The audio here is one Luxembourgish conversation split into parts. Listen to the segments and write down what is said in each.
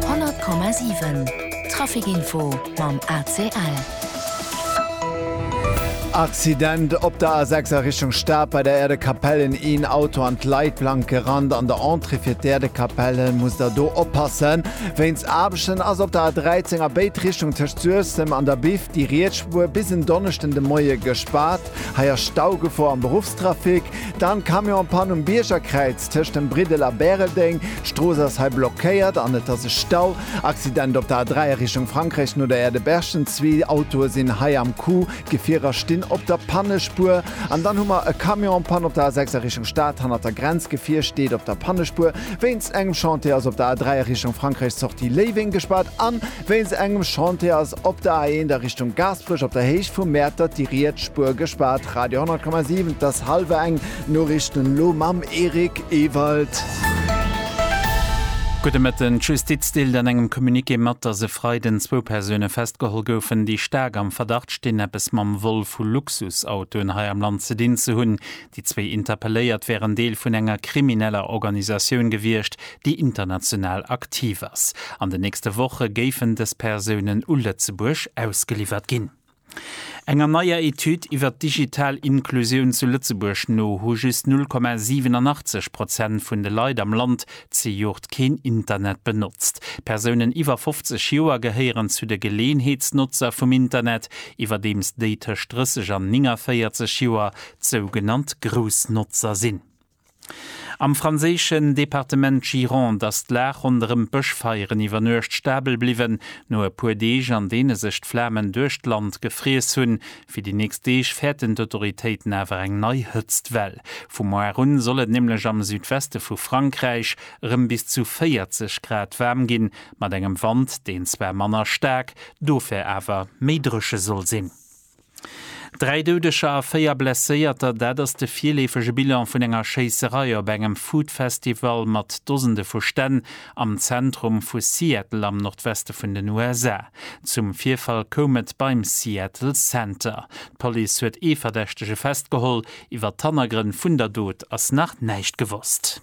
100,7 Traficinfo mam ACL. Accident op der A6 a Richtung Stad, bei der Äerdekapell en een Auto an d'Leitplank gerannt. An der Entrée fir d'Äerdekapell musst der do oppassen. Wéinst Aarbechten ass op der A13 a béid Richtung tëscht Suessem an der Biff déi riets Spuer bis en Donneschden de Moie gespaart. Hei ass Staugefor am Beruffstrafic. Dann Camion-Pann um Biergerkräiz. Tëscht dem Briddel a Bäreldeng, d'Strooss ass hei blockéiert an et ass e Stau. Accident op der A3 a Richtung Frankräich no der Erdeberschden, zwee Autoe sinn hei am Coup, d'Gefierer stinn op der Pannespuer. An dann hu mer e Camion en Panne op der A6 a Richtung Stad, hannert der Grenz, d'Gefier steet op der Pannespuer wéinst engem Chantier, ass op der A3 a Richtung Frankräich, Sortie Léiweng gespaart an Wéinst engem Chantier ass op der A1 a Richtung Gaasperech op der Héicht vu Mäertert déi riets Spuer gespaart. Radio 10,7 't ass hallwer eng, Noriichten elo mam Eric Ewald. Gudde Mëtten. D'Justiz deelt an engem Communiqué mat, datt e Freiden zwou Persoune festgeholl goufen, déi staark am Verdacht stinn, eppes mam Vol vu Luxusautoen hei am Land ze dinn ze hunn. Déi zwee Interpelléiert wären Deel vun enger krimineller Organisatioun gewiescht, déi international aktiv ass. An den nächste Woche géifen dës Persounen u Lëtzebuerg ausgeliwwert ginn. Enger neier Etüd iwwer d'digital Inklusioun zu Lëtzebuerg no hu just 0,87 Prozent vun de Leit am Land zejoert keen Internet benotzt. Persounen iwwer 50 Joer gehéieren zu de Geleeënheetsnotzer vum Internet, iwwerdeems déi tëscht 30 an 49 Joer d'sougenannt Groussnotzer sinn. Am franséischen Departement Gironde ass d'Lag ronderëm d'Bëschfeieren iwwer Nuecht stabel bliwwen. No e puer Deeg, an deene sech d'Flamen duerch d'Land gefriess hunn, fir déi nächst Deeg fäerten d'Autoritéiten awer eng nei Hëtztwell. Vu moar un soll et nämlech am Südweste vu Frankräich erëm bis zu 40 Grad waarm ginn, mat engem Wand, deen zwar manner staark, dofir awer méi dréche soll sinn. Dräi Doudeger a véier Blesséierter, dat ass de virleefege Bilan vun enger Schéisserei op engem Food-Festival mat Dosende vu Stänn am Zentrum vu Seattle am Nordweste vun den USA. Zum Virfall koum et beim Seattle Center. D'Police huet ee Verdächtege festgeholl. Iwwer d'Hannergrënn vun der Dot ass nach näischt gewosst.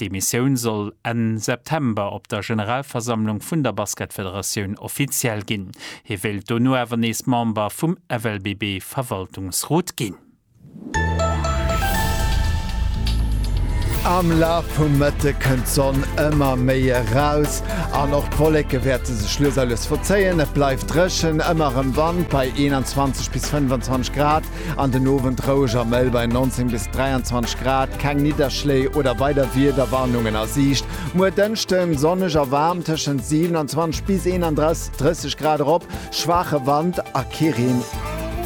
Déi Missioun soll Enn September op der Generalversammlung vun der Basketfederatioun offiziell ginn. Hie wéilt dono awer nees Member vum FLBB-Verwaltungsrot ginn. Am Laf vum Mëtte kënnt d'Sonn ëmmer méi eraus an och d'Wolleke wäerte sech lues a lues verzéien. Et bleift dréchen, ëmmer erëm Wand bei 21 bis 25 Grad. An den Owend roueg a mëll bei 19 bis 23 Grad, keng Nidderschléi oder weider Wiederwarnungen a Siicht. Muer Dënschden, sonneg a waarm, tëschent 27 bis 31, 30 Grad erop, schwaache Wand a kee Reen.